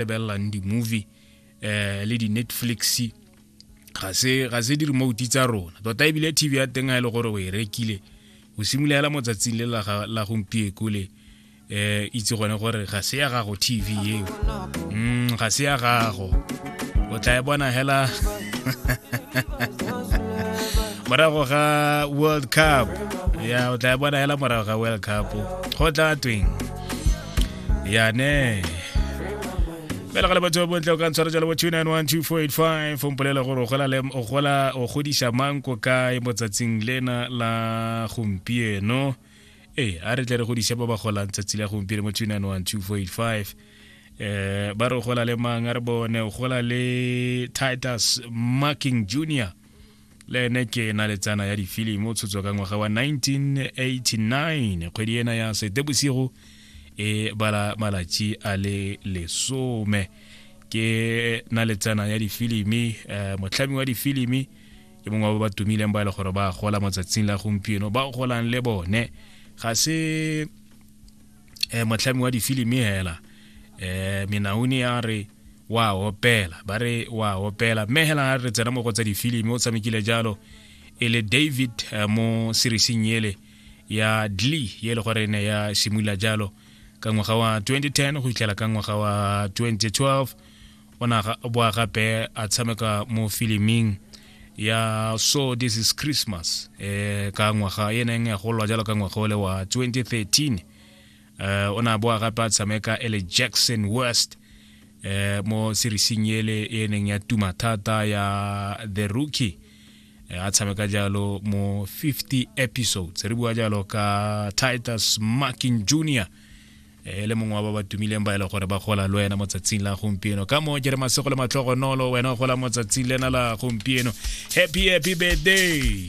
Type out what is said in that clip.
lebelelang di-movie um le di-netflix ga se ga se di-remote tsa rona tota ebile tv ya teng a e le gore o e rekile o simologela mo tsatsing le la gompieko le um itse gone gore ga se ya gago tv eo mm, ga se ya gago o tla e bona hela morago ga world cup ya o tla e bona hela morago ga world cup go tla tweng yane fela gale batho bontle o ka ntshwara jalo bo 2912485 o mpolela gore o gola o godisa mang ko kae mo tsatsing lena la gompieno ee a re tle re godise ba ba golang tsatsi la gompieno mo 2912485 eh ba re gola le mang a re bone o gola le titus marking junior le ene ke na le tsana ya difilimi o tshotswa ka ngwaga wa 1989 kgwedi ena ya setebosigo e bala malatši a le lesome ke na le tsana ya difilimi um motlhami wa difilimi ke mongwe wa ba ba tumileng ba e le gore ba gola motsatsing la gompieno ba golang le bone ga se eh, motlhami wa difilimi hela eh, menauni ya re wa opela ba re wa opela mme hela a re tsena mo go tsa difilimi o tshamekile jalo e le david eh, mo seriesing ele ya dlee ye le gore ne ya simolola jalo ka ngwaga wa 2010 go fitlhela ka ngwaga wa 2012 o ne a boa gape a tshameka mo filiming ya so this is christmas eh ka ngwaga e neng ya golwa jalo ka ngwaga ole wa 2013 eh o ne a boa gape a tshameka ele jackson west eh mo serising ele e neng ya tuma thata ya the rookie eh, a tshameka jalo mo 50 episodes re bua jalo ka titus markin junior e le mongwe wa ba ba tumileng ba e le gore ba gola le wena mo tsatsing la gompieno ka moo ke re masego le matlhogonolo wena o gola mo tsatsing lena la gompieno happy happy birthday